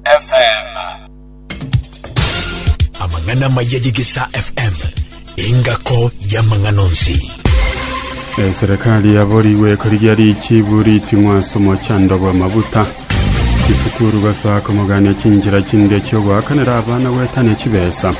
FM. Amang'ana amaya y'Egesaa FM, engako y'amang'ana onsi. Eserekari yaborigwe ekorigia richibu riting'wa ase omochando bw'amabuta. Chisukuru gosoa komogania chinchera chinde chi'ogoakanera abana goetania chibesa.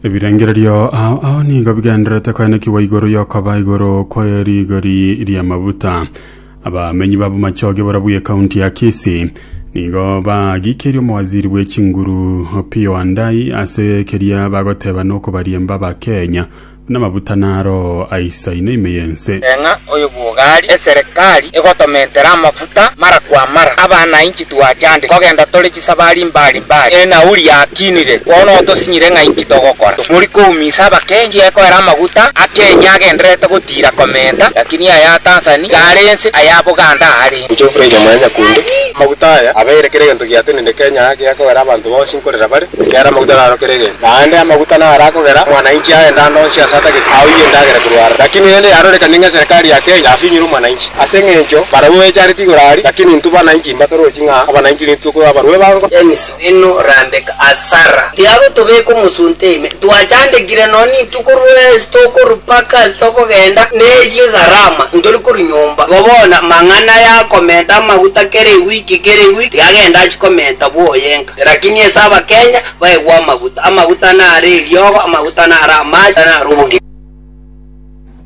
Ebirengererio ao ao nigo bigendererete koenekigwa igoro y'okoba igoro kwe rigori ri'amabuta. Abamenyi ba Bomachoge borobwo y'ekaunti ya Kisii nigo bagikirie omowaziri bwe chinguru Opiyo Wandayi ase keria bagoteba nokobariemba Abakenya buna amabuta naro aisaine ime y'ense. Eng'a oyo bwogari eserekari egotomentera amafuta. Gita mara kwa mara, abana inki twachande kogenda tore chisabari mbari mbari, enauri yakinire, bono otosinyire ng'a inki togokora. Tomori koumisa abakengi ekoera amaguta a Kenya agendererete gotiira komenta, lakini aya a Tanzani iga are ense, aya a Buganda aare ense. Gocha ofurainwe mwanyakunde. Amaguta aya abeire kera egento giatenende Kenya aa gekoera abanto bonsi. gokorera bare, ekiagera amaguta narokere egento. Naende amaguta naro akogera omwananchi agende ande onsi ase atagete aoyie endagera korwa are. Lakini rende yarorekanie ng'a eserekari ya Kenya yafinyire omwananchi. Ase engencho barabwo echareti igoro aria, lakini intwe bananchi mbatorochi ng'a abananchi nigo tokoba abarwa ebango. Denis Wino orandeke asara tiaro tobeka omosunte ime twachandekire nonye nintwe korwa ase tokorwa mpaka ase tokogenda neyio egarama ntori korwa nyomba igo bono mang'ana yakomenta amaguta kera ewiki kera ewiki tiagenda achikomenta bwoyenga. Rakini ase abakenya baegwe amaguta, amaguta nare eriogo, amaguta nare amache, nare obogima.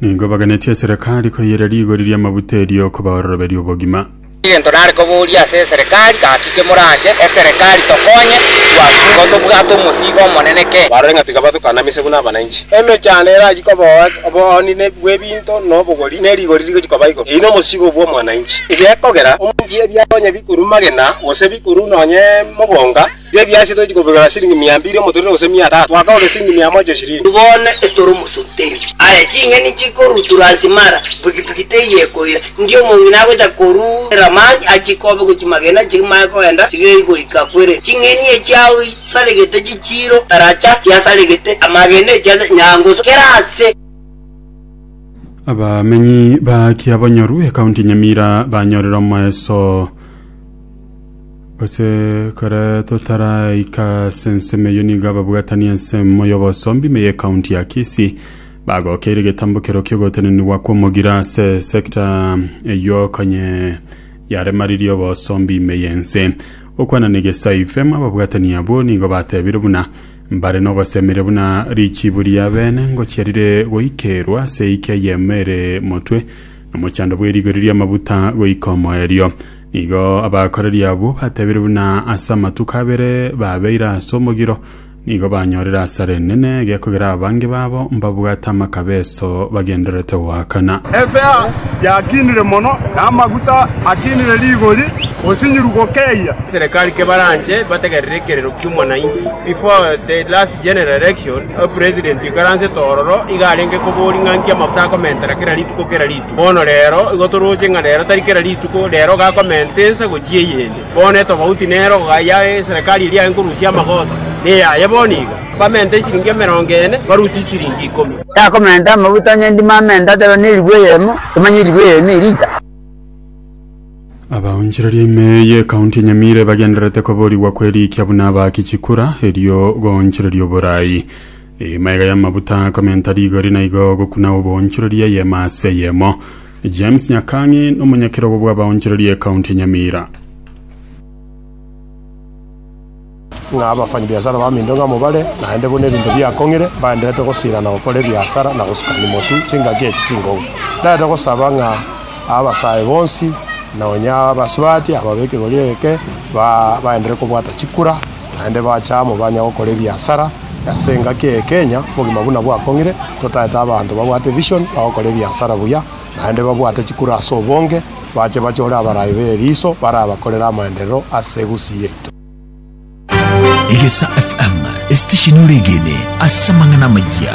Nigo baganetie eserekari koiyera rigori ri'amaguta erio kobaoroberia obogima. Egento nare koboria ase eserekari, gaki kemorache eserekari tokonye, twasingwa tobwate omosiigo omonene kee. Barore ng'a tiga bathukanamiswe buna abananchi. Emechando erachie koba oboonini bw'ebinto. Egento na obogori ne rigori rigochia koba igoro. Eyio nomosigo bw'omwananchi. Egekogera omonchi ebiato onye bikoru magena, gose bikoru nonye mogonga, tiga ebiasi tochi kobigora siringi mia mbiri omotorero gose mia tatu, goaka ore siringi mia mocha eshirini. Bono etore omosuteri. Aye ching'eni chikorutura nse mara, pikipiki teiyo ekoira, ndi omong'ina agocha koruera mani achie kobe gochia magena chimanye kogenda chigei goika kwere. Ching'eni echi agwo chisaregete chichiiro, taracha, chiasaregete, amagena echianda, nyangoso, kera ase. abamenyi ba kiabonyoru ekaunti nyamira banyorire omoeso ase kare totaraika ase ensemo eyo nigo ababwatani ensemo y'obosombi me ekaunti ya kisi bagokeire getambokero kiogotenenigwa kw'omogira ase sekta eywo kanye yaremaririe obosombi ime y'ense okwana na egesaifem ababwatani abwo nigo batebire buna Mbare nogosemeria buna richiibu ri'abeene ngochia rire goikeirwa ase eike eyemo ere motwe, nomochando bw'erigori ri'amaguta goika omoerio. Nigo abakoreri abwo batebirie buna ase amatuko abere babeire ase omogiro nigo banyorire asare enene egekogera abange babo mbabwate amakabe Yeso bagendererete goakana. Efea yakinire mono, na amaguta akinire rigori, osinyiru gokeyia. Serekari kebaranche bategerere ekerero ki'omwananchi. Before the last general election, opresident oikaransete ororo iga arenge koboria ng'a nki amaguta akomentera kera rituko kera rituko. Bono rero igo toroche ng'a rero tari kera rituko, rero iga akomenta ense gochia eyende. Bono etobauti nero iga ya eserekari eria enkorusia amagoso neyaye bono iga. Bamenta esiringi emerongo ene, barusie esiringi ikomi. Yakomenta amaguta onye ndimo amente atareo ne erigwa eyemo, tomanya erigwa eyemo eri inta. Abaonchoreria ime y'Ekaunti ya Nyamira ebagendererete koborigwa kw'erikia buna abaaki chikura erio goonchoreria oboraai. Emaiga y'amabuta akomenta rigori naigo gokuna oboonchoreria eyemo ase eyemo. James Nyakang'e nomonyakerogo bw'abaonchoreria Ekaunti ya Nyamira. ng'a abafanyabiasara ba minto ng'amo bare, naende buna ebinto biakong'ire, mbaenderete gosiira na gokora ebiasara, na gosuka nimotu chingaki echi chinkongu. Ndarete gosaba ng'a abasae bonsi, na onye abasubati aba b'ekegoria eke, ba- baenderere kobwata chikura, naende bache amo banye gokora ebiasara ase engaki eye Kenya obogima buna bwakong'ire, totaete abanto babwate vision bagokora ebiasara buya, naende babwate chikura ase obonge, bache bachore abarai b'eriso barabakorere amaenderero ase egusii yaito. Egesa FM esitesheni oregene ase amang'ana amayia.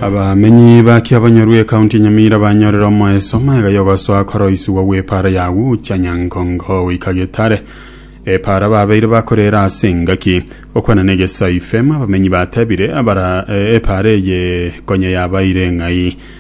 abamenyi ba kiabanyoru ekaunti ya nyamira banyorera omoeso omaega yogosoa koroisigwa gw'epara ya gucha nyankongo goika getare epara babeire bakorera ase engaki okwana na egesa ifem abamenyi batebire abara eh, epara eye konya yabaire ng'ai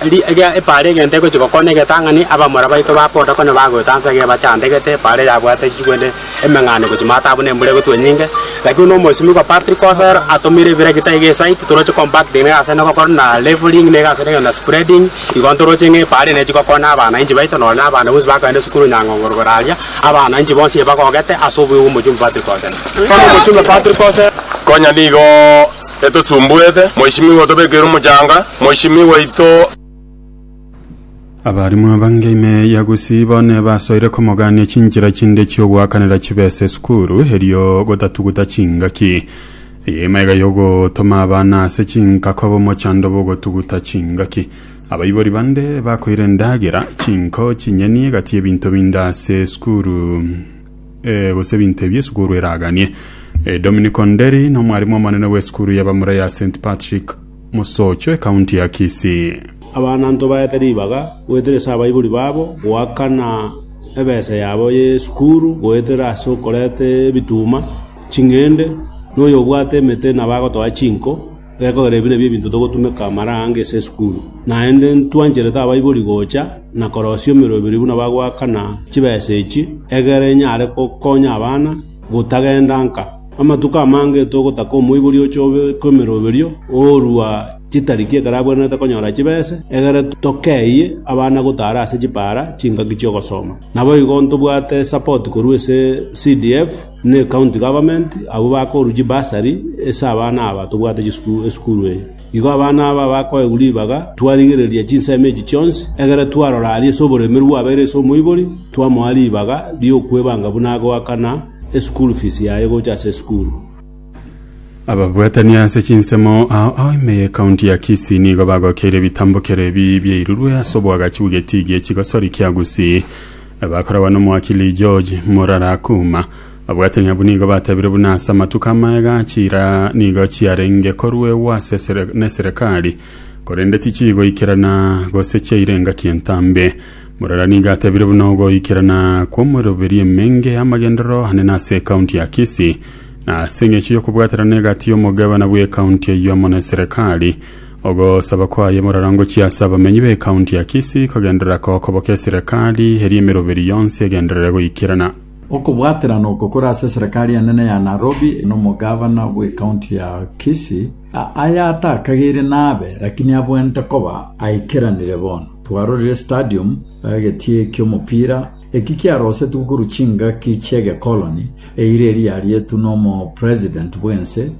Eri eria epaara egento egochia gokona egetang'ani, abamura baito ba boda konya bagoeta ansa iga ebachandegete, epaara yabwate chichi korende emeng'ana egochia maate abwo na embura egotwa enyinge. Lakini buna omosimigwa Patrick Osero atomire ebirekita iga esite, toroche compacting na egasi ende gokora, na leveling na egasi ende gokora, na spreading, igo ntoroche ng'a epaara eye nechigokonya abanainchi baito nonye na abana bonsi bakoenda esukuru Nyang'ongoro igoro aria, abanainchi bonsi ebagogete ase obuya bw'omochumbi Patrick Osero. Bono omochumbi Patrick Osero. Konya nigo Getosumbuete, Mweshimiwa otobekeire omochanga, Mweshimiwa oito. Abarimu abange ime ya Gusii bone basoire komogania chinchera chinde chiogoakanera chibesa esukuru erio gotatuguta chingaki. Eye ime iga yogotoma abana ase chinka koba omochando bw'ogotuguta chingaki. Abaibori bande bakoira endagera, chinko, chinyeni, egati ebinto binde ase esukuru eh, gose ebinto ebi esukuru eraganie. Eh, Dominic Onderi nomwarimu omonene bw'esukuru ya bamura ya St Patrick Mosocho ekaunti ya Kisii. Abanto baete ribaga goetera ase abaibori babo goakana ebesa yabo y'esukuru goetera ase okoreta ebituma, ching'ende, na oyobwate emete nabagotoa chinko. Gekogera ebi nabio ebinto togotumeka amara aange ase esukuru. Naende ntwancherete abaibori gocha na korosia emeroberi buna bagoakana chibesa echi, egere enyare gokonya abana gotagenda nka. Amatuko amange togotaka omoibori ochobe kw'emeroberio oorua chitariki ekero abwenerete konyora chibesa, egere tokeyie abana gotaara ase chipaara chingaki chi'ogosoma. Naboigo ntobwate esapoti korwa ase CDF. Ne county government abwo bakoruchie bursary ase abana aba tobwate chisukuru esukuru eye. Igo abana aba bakoegwa ribaga twarigereria chinsemo echi chionsi, egere twarora aria ase oboremeru bwabeire ase omoibori, twamoa ribaga riokwebanga buna agoakana esukuru fees yaye gocha ase esukuru. Ababwatani ase chinsemo ao ao ime ye county ya Kisii nigo bagokeire ebitambokero ebi biairurwe ase obwagachi bw'Getiigi ekigosoria kia Gusii. Na bakoragwa n'omoaki Lee George, morara Akuma, abwatire abwo nigo batebire buna ase amatuko amaega chira nigo chiarenge koruegwa ase esere- neserekari, korende tichigoikerana gose chiaire engaki entambe. Morara nigo atebire buna ogoikerana kw'omoiroberi emenge y'amagenderero ane na ase ekaunti ya Kisii, na ase eng'echo y'okobwaterana egati y'omogabana bw'ekaunti eyio amo neserekari, Ogosaba kwaye morarongochie ase abamenyi b'ekaunti ya Kisii kogenderera kokoboka eserekari eria emeroberi yonsi egenderere goikerana. Okobwaterana oko kore ase eserekari enene ya Nairobi nomogavana bw'ekaunti ya Kisii, aya atakagaire nabe lakini abwenerete koba aikeranire bono. Twarorire stadium, egetie ki'omopira, eki kiarosetigwe korwa chingaki chi'egekoloni, eira eria yarietwe n'omopresident bw'ense,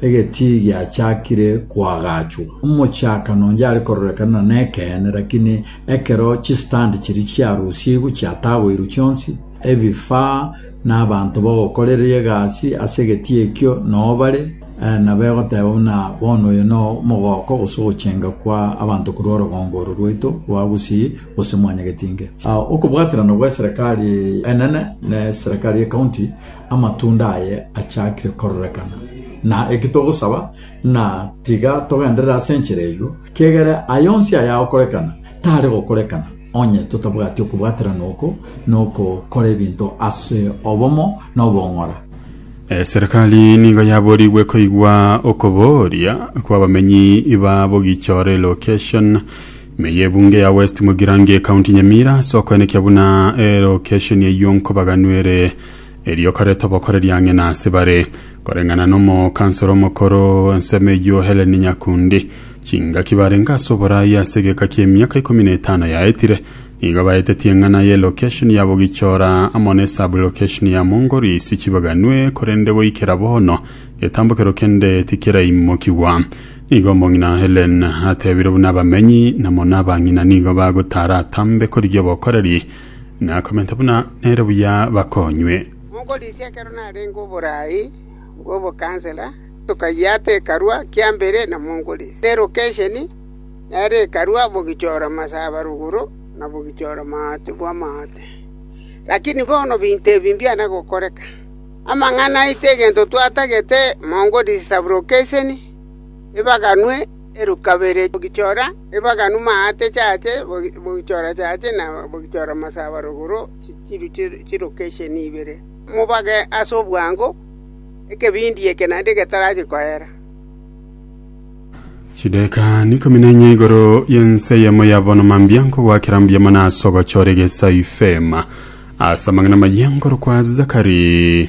Egetii giachakire koagachwa. Omochaka nonye are kororekana nekeene, lakini ekero chistand chiria chiarusigwe chiatagoirwe chionsi, ebifaa na abanto bagokoreria egasi ase egetii ekio noo bare, nabo egoteba buna bono oyo noo omogooko gose ogochenga kwa abanto korwa orogongo oro rwaito rwa Gusii gose Mwanyagetinge. Okobwaterana gweserekari enene neserekari ye county. amatunda aye achakire kororekana. Na eki togosaba ng'a tiga togenderere ase enchera eyio, kiegere aye onsi ayagokorekana tare gokorekana onye totabwati okobwaterana oko na okokora ebinto ase obomo na obong'ora. Eserekari nigo yaborigwe koigwa okobooria kw'abamenyi ba Bogichore location me y'ebunge ya West Mugirango ecounty Nyamira ase okoenekia buna elocation eyio nkobaganwere Erio kareta obokoreri ang'e nase bare, koreng'ana n'omokansoro omokoro ensemo eyio Helen Nyakundi. Chingaki barenge ase oboraai ase egeka ki'emiaka ikomi na etano yaetire, nigo baetetie eng'ana ye lokeshoni ya Bogichora amo ne sub-lokeshoni ya Mongorisi chibaganwe korende goikera bono getambokero kende tikeraimokigwa. Nigo omong'ina Helen atebire buna abamenyi na mono abang'ina nigo bagotaara atambe korigia obokoreri Nakomenta buna nere buya bakonywe. Monkorisia ekero narenge oboraai bw'obokansela, tokayiata ekarua kia mbere na Monkorisia. Ne lokesheni nere ekarua bogichora masaba ruguru na bogichora maate bw'amaate. Lakini bono binto ebi mbiana gokoreka. Amang'ana aito egento twatagete Monkorisia sub-lokesheni ebaganwe. Erukabere bogichora ebaganu maate chache, bogichora chache, na bogichora masaba rogoro, chiru chirokesheni ibere. Mobage ase obwango ekebindi eke naende getarache koera. Chidaeka ikomi na enye igoro y'ense eyemo ya bono mambia nkogoakera mbuya mono ase ogochora egesaifema ase amang'ana amayia nkorokwa Zakari.